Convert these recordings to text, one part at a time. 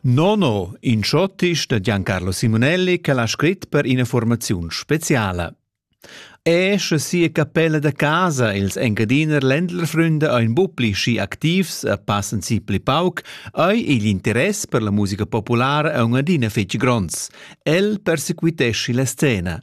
Nono, in schottisch da Giancarlo Simonelli che l'ha scrit per ina formaziun speciala. E sche sia capella da casa ils Engadiner Ländlerfründe ein bupli schi activs e passen si pli pauc, ei igl interess per la musica populara aunc adina fetg gronds. El persequitesci la scena.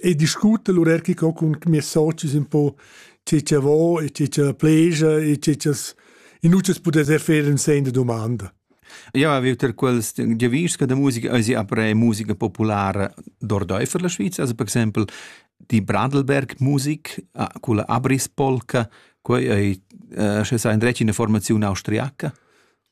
e discuta l'urerchica cun mias socis un po tge cha vo e tge cha pleja e tge cha's in utas pudess fer in sen da dumanda. Jau avev tar quels giavischs che da musica esi après musica populara d'ordaifer la Sviza, also per exempel die Bradelberg-Musik ah, con la Abrispolka, quei ei, eh, sche sa in dretg in formazione austriaca.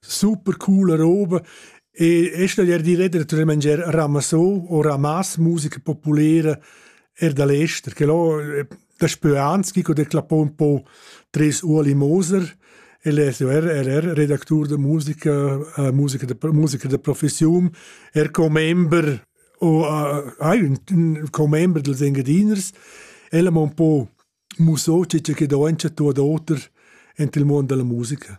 Super coola roba e e staglier dir ed er tut mangier ramassò o ramas musica populera er da l'ester che là da spö anzi co de clappò un po tres Ueli Moser el es er er er redactur da musica uh, musica da musica da professiun er commember o uh, hai un, un commember dels Engadiners ella m'ha un po mussò che che do en tu ad oter ent il mondo della musica